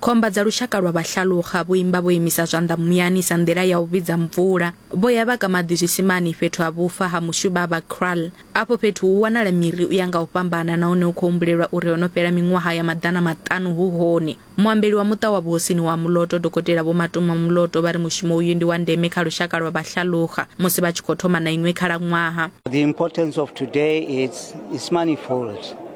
Khomba dza lushaka lwa vhahlaluxa vho imba vho imisa zwanḓa muyani sa nḓila ya u vhidza mvula. Vho ya vha ka maḓi zwisimani fhethu ha vhufa ha mushuvha vha kraal. Afho fhethu hu wanala miri u ya nga u fhambana nahone hu khou humbulelwa uri ho no fhela miṅwaha ya maḓana maṱanu hu hone. Muambeli wa muṱa wa vhuhosini wa Muloto, Dokotela Vho Matuma Muloto vha ri mushumo uyu ndi wa ndeme kha lushaka lwa vhahlaluxa musi vha tshi khou thoma na iṅwe khalaṅwaha. The importance of today it's, it's manifold.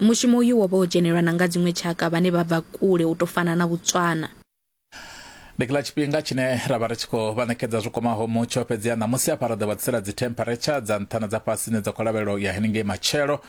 Mushumo uyu wo vha wo dzhenelwa na nga dziṅwe tshaka vhane vha bva kule u tou fana na Botswana. Ndi kha tshifhinga tshine ra vha ri tshi khou vha ṋekedza zwi kwamaho mutsho, fhedziha ṋamusi hafha ro ḓo vha ḓisela dzithempharetsha dza nṱha na dza fhasi dzine dza khou lavhelelwa u ya henengei matshelo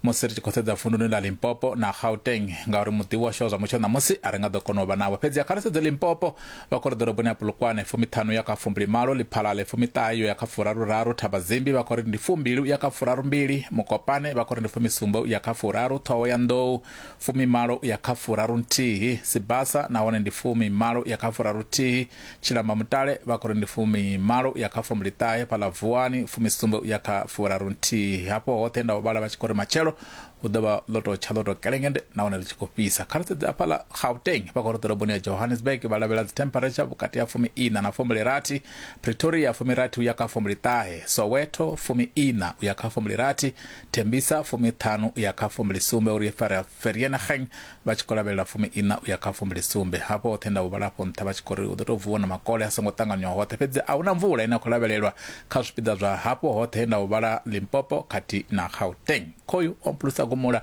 musi ri tshi khou sedza vunduni ḽa Limpopo na Gauteng ngauri muḓivhi washu wa zwa mutsho ṋamusi a ri nga ḓo kona u vha navho. Fhedziha kha ri sedze Limpopo, vha khou ri ḓoroboni ya Polokwane fumiṱhanu ya kha fumbilimalo, Liphalale fumiṱahe yo ya kha furaruraru, Thabazimbi vha khou ri ndi fumbili u ya kha furarumbili, Mokopane vha khou ri ndi fumisumbe u ya kha furaru, Ṱhohoyanḓou fumimalo u ya kha furarunthihi, Sibasa nahone ndi fumimalo u ya kha furaruthihi, Tshilamba Mutale vha khou ri ndi fumimalo u ya kha fumbiliṱahe, Phaḽa Vuwani fumisumbe u ya kha furarunthihi. Hafho hoṱhe nda u vhala vha tshi khou ri matshelo hu ḓo vha ḽo tou tsha ḽo tou kelengende nahone ḽi tshi khou fhisa kha ri sedze afhaḽa gauteng vha khoro ḓoroboni ya johannesburg vha lavhelela dzithemperature vhukati ha fumi ina na fumbilirathi pretoria fumirathi u ya kha fumbiliṱahe soweto fumi ina u ya kha fumbilirathi thembisa fumiṱhanu u ya kha fumbilisumbe uri vereeniging vha tshi khou lavhelela fumi-iṋa u ya kha fumbili-sumbe ha vhoṱhe nda u vhala afho nṱha vha tshi khou ri hu ḓo tou vuwa na makole a songo ṱanganywaho hoṱhe fhedzi a hu na mvula ine ya khou lavhelelwa kha zwipiḓa zwa hafho hoṱhe nda u vhala Limpopo khathihi na Gauteng. Khoyu o mpulusa gumula